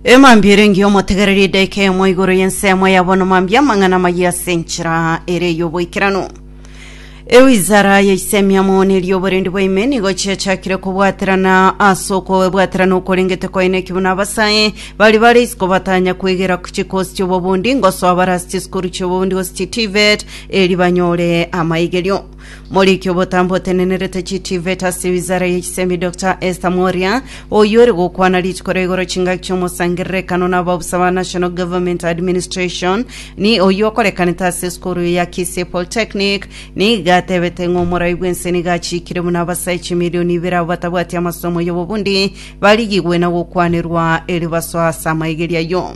emambia ere engiya omotegereri edaika eyemo igoro y'ensemo yabo nomambia amang'ana maye ase enchera ere y'oboikeranu ewizara ya isemiamo nerioborendi bwaime nigo chiachakire kobwaterana ase okobwaterana okorengete koeneki buna abasae bari bare isiko batanya kwegera chikosi chiobobundi ngosoa bare ase chisukuru chiobobundi gose chitivet eri banyore amaigerio Moriki obotambe otenenerete chitivet ase wizara ye chisemi Doctor Esther Mworia oyio ore gokwana rituko ria igoro chingaki chiomosangererekano na abaobusa ba National Government Administration ni oyio okorekanete ase esukuru ya Kisii Polytechnic niga atebete ng'a omorai bwense niga achikire buna abasae chimilioni ibere abo batabwati amasomo y'obobundi barigigwe na gokwanerwa eribaso ase amaigeria ayio.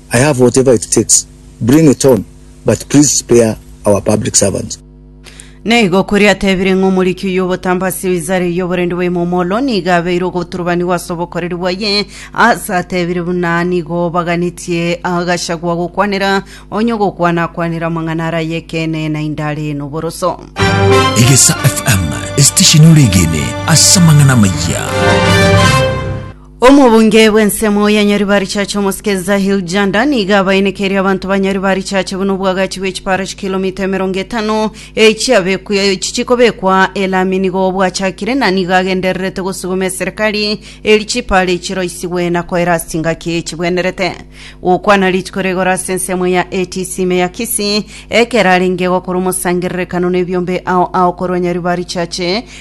I have whatever it takes, bring it on, but please spare our public servants. Na igo koria atebire ng'a omoriki oyio obotambe ase Isare y'oborendi bwa Imomolo nigo abeire ogoturubanigwa ase obokoreri bwaye, ase atebire buna nigo baganetie Gachagua gokwanera, onye ogokwana akwanere amang'ana are ay'ekeene naende are noboroso. Egesa FM, estesheni ore egene ase amang'ana amaya. Omobunge bw'ensemo ya Nyaribarichache Omosike Zahil Janda nigo abaenekeire abanto ba Nyaribarichache buna obwagachi bwe chipara chikilomita emerongo etano echiabekwe chichikobekwa elami nigo bwachakire na nigo agendererete gosuguma eserekari eri chipara echi roisigwe na koera ase chingaki chibwenerete gokwana rituko rigoro ase ensemo ya ATC ime ya Kisii ekero arenge gokora omosangererekano nebiombe ao ao korwa Nyaribarichache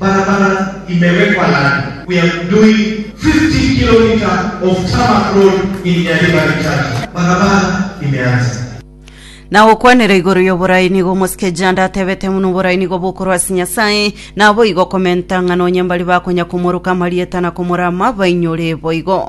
Barabara imewekwa lami, we are doing 50 kilometer of tarmac road in Nyaribari Church, barabara imeanza. Na gokwanera igoro y'oborai nigo omosike Janda atebete buna oborai nigo bokorwa ase Nyasae, naboigo komenta ng'a nonye mbari bakonya komoruka amarieta na komorama, bainyore boigo.